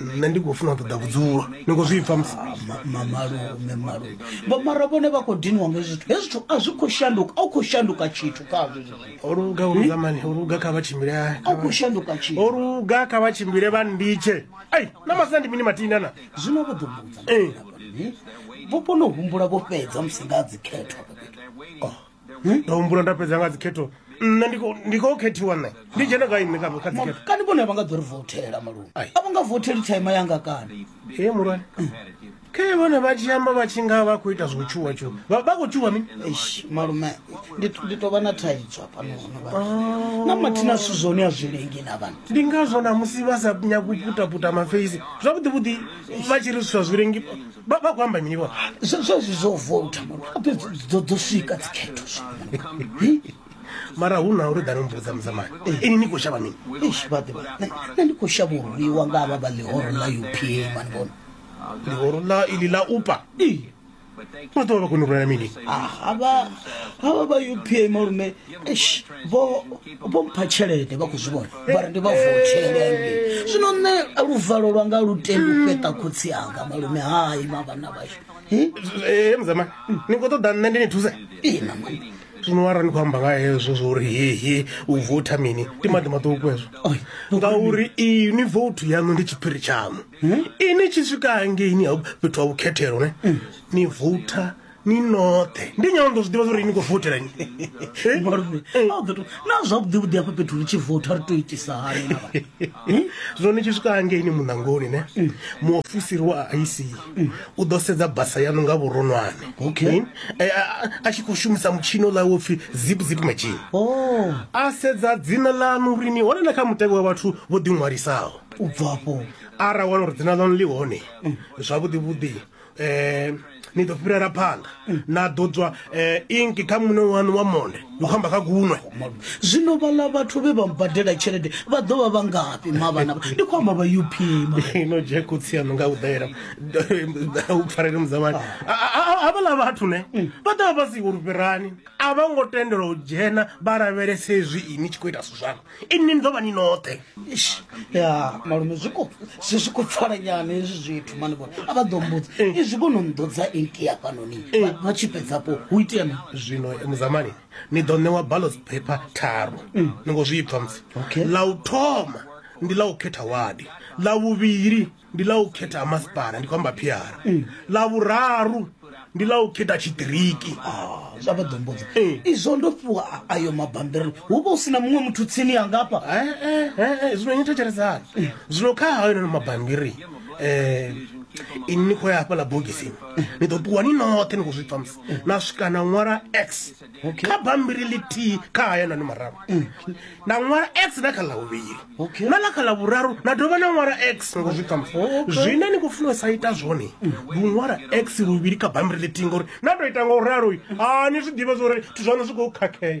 nṋe ndi khou funa u ṱoḓa vhudzulo ni khou zwi pfa mamalume malume mara vhone vha khou diniwa nga zwithu hezwi zwithu a zwi khou shanduka a u khou shanduka tshithu khazwo o luga o luga mani o luga kha vha tshimbile a u khou shanduka tshithu o luga kha vha tshimbile vha nditshe ai na masina ndi mini matina na zwino vho ḓo vhudza vho kona u humbula vho fhedza musi nga dzikhetho oh hmm? ndo humbula nda fhedza nga dzikhetho nṋe ndi khou khethiwa nṋe ndi dzhene gai nṋe kha dzikhetho kani vhone vha nga ḓo ri votela malume a vho nga voteli thaima yanga kani e mulwane hmm. khe vhone vha tshi amba vha tshi nga vha khou ita zwo tshuwa tshuwa vha khou tshuwa mini malume ndi tovha na thaidzo hafhanohonaa na mathina zwithu zwone a zwi lengi na vhana ndi ngazwo na musi vha sa nyaku putaputa mafeisi zwavhuḓi vhuḓi vha tshi ri zwithu zwa zwi lengi vha vha khou amba mini vhona zwezwi zwo vouta dzo dzo swika dzikhetho mara hu na uri dani mbudza mudzamani ini ni khou shavha mini vhaḓivha nṋe ndi khou shavha urwiwa nga vha vha ḽihoro ḽa upa mani vhona ḽihoro ḽa ili ḽa upa vha ḓo vha vha koni u rwela mini havha vha upa malume eish vho vho mpha tshelede vha khou zwi vhona vha ri ndi vha vothelenge zwino nṋe luvalo lwanga lu tendi u fheṱa khotsi anga malume hai ma vhana vhashu Eh, eh, mzama ni khou ṱoḓa nṋe ndi ni thuse ina mani zwino wara ni khou amba nga hezwo zwo uri hehe u votha mini ndi maḓi maṱuku hezwo Oi, ngauri ini vouthu yaṋu ndi tshiphiri tshaṋu ini tshi swika hangeini ha fhethu ha vhukhethelo ne ni voutha ni noṱhe ndi nyalo ndo zwi ḓivha zwauri ni khou votela ni eh? malume eh. a ḓo to na zwavhuḓi vhuḓi hafha fhethu ri tshi vota ri to itisa hani na vhathu eh? zwo ni tshi swika hangeini muṋangoni ne mm. muofisiri wa ic mm. u ḓo sedza basa yanu nga vhuronwane okay a tshi khou shumisa mutshino ḽa wo pfhi zip zip machine oh. a sedza dzina ḽanu uri ni hone na kha mutevhe wa vhathu vho ḓiṅwalisaho u bvafho ara wana uri dzina ḽanu ḽi hone mm. zwavhuḓi vhuḓi eh ni ḓo fhirela phanḓa na ḓo tswa eh inki kha muṋe wanu wa monde ndi khou amba kha gunwe zwino vhala vhathu vhe vha mbadela tshelede vha ḓo vha vha ngafhi mavhana ndi khou amba vha up ino je khotsi yanu nga u ḓela u pfarele mudzamani havhala vhathu ne vha ḓa vha si uri fhirani a vha ngo tendelwa u dzhena vha lavhelese hezwi ini tshi khou ita zwithu zwanga inni ni ḓo vha ni noṱhe ya malume zwi khou zwi zwi khou pfala nyana hezwi zwithu mani vhone a vha ḓo mbudza eh. izwi kono nḓodza eki ya fhanoni eh. vha tshi fhedzapo hu itea mi zwino eh, muzamani ni ḓo ṋewa ballots paper tharu mm. ni ngo zwi pfha musi ḽa u thoma ndi ḽa u khetha wadi ḽa vhuvhili ndi ḽa u khetha ha masipala ndi khou amba phiara mm. ḽa vhuraru ndi ḽa u khetha tshiṱiriki ah, zwa vha ḓombodza eh. izwo ndo fhiwa ayo mabambiri hu vha u si na muṅwe muthu tsini ya ngafha eh, eh, zwino nyi thetshelesani zwino kha hayo nono mabambiri um ini ni khou ya hafhaḽa bogisini ni ḓo ṱuwa ni noṱhe ni khou zwi pfamisa na swika na ṅwala x kha bambiri ḽithihi kha hayanani mararu mm. na ṅwala x na kha ḽa vhuvhili na ḽa kha ḽa vhuraru na dovha na ṅwala x ngo zwi ṱamusa oh, zwine ni khou funa u sa ita zwone mm. ndi u ṅwala x luvhili kha bambiri ḽithihi ngori na tou ita nga u ralo a ni zwi ḓivhe zwa uri zwithu zwaṋu zwi khou khakhea